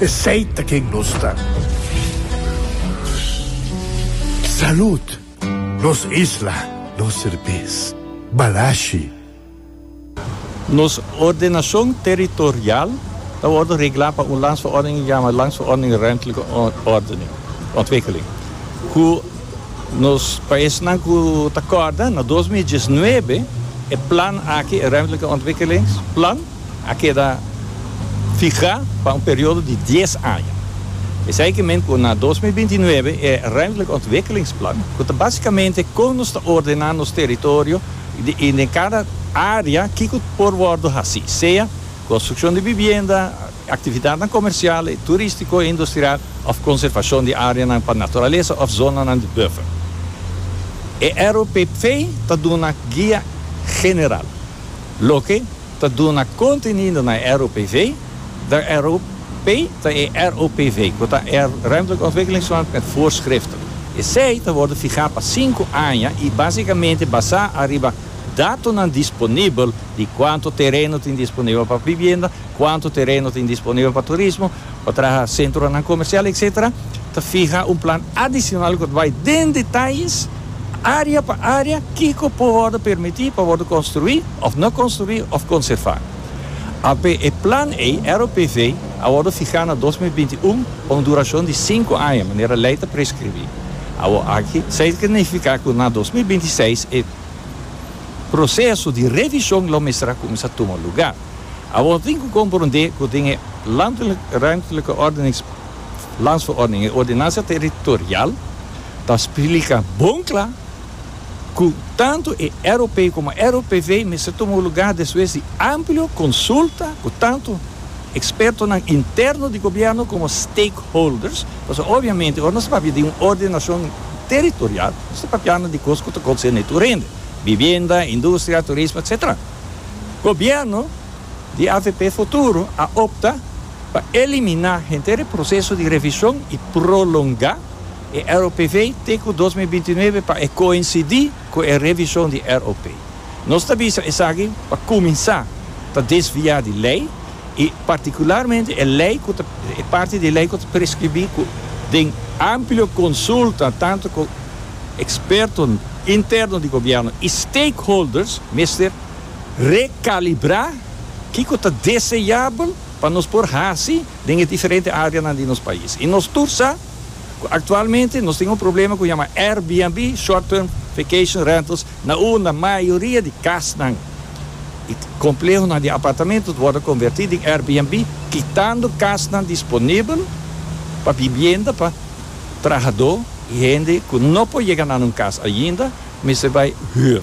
Esey ta ken nos ta. Salud! Nos isla, nos serbes. Balashi. Nos ordenacion territorial ta wordo regla pa un landsverordening yama Landsverordening Ruimtelijke Ordening, Ontwikkeling, cu nos paisnan cu ta corda na dos mil diesnuebe e plan aki, e Ruimtelijke Ontwikkelingsplan, a keda fihá pa un periodo di dies aña. Esei ke men ku na dos mil binti nuebe e Ruimtelijke Ontwikkelingsplan, ku ta básikamente kon nos ta ordená nos teritorio i den kada área kiko por wòrdu hasí, sea konstrukshon di bibienda, aktividatnan komersial i turístiko i industrial òf konservashon di áreanan pa naturalesa òf zonanan di buffer. E ROPP ta duna guia general. Loke ta duna kontenido na e ROPV, De ROP ta e ROPV ku ta e Ruimtelijke Ontwikkelingsverband met Voorschriften. Esei ta wòrdu fihá pa sinku aña i básikamente basá ariba datonan disponibel di kuantu tereno tin disponibel pa bibienda, kuantu tereno tin disponibel pa turismo, pa traha sentronan komersial etsetera, ta fiha un plan adisional ku ta bai den detayes, área pa área, kiko por wòrdu permití pa wòrdu konstruí òf no konstruí òf konservá. Apé e plan ei, ROPV, a wòrdu fihá na dos mil binti un pa un durashon di sinku aña, manera lei ta preskribí. Awor aki, sa ta nifiká ku na dos mil binti seis e proseso di revishon lo mester a kuminsá tuma lugá. Awor tin cu comprende cu den e Landelijk-Ruimtelijke Ordenings, Landsverordening, e Ordenansa Territorial, ta splica bon cla cu tanto e ROP como e ROPV mester tuma un lugar despues di amplio consulta cu tanto expertonan interno di Gobierno como stakeholders, pasobra obviamente ora nos ta papia di un ordenacion territorial nos ta papiando di cos cu ta concerne tur hende, vivienda, industria, turismo, etcetera. Gobierno di avp Futuro a opta pa eliminá henter e proseso di revishon i prolongá e ROPV te ku dos mil binti nuebe pa e koinsidí ku e revishon di ROP. Nos ta bisa esaki pa kuminsá ta desviá di lei. i partikularmente e lei ku ta e parti di e lei ku ta preskribí ku den amplio konsulta tantu ku ekspertonan interno di gobièrnu i stakeholders mester rekalibrá kiko ta deseabel pa nos por hasi den e diferente áreanan di nos pais i nos tur sa Cu actualmente nos tin un problema cu yama Airbnb, Short Term Vacation Rentals, na unda mayoria di casnan y complehonan di apartamentonan wordo converti den Airbnb, kitando casnan disponibel pa bibienda pa trahador y hende cu no por yega na nan cas ainda, mester bay huur.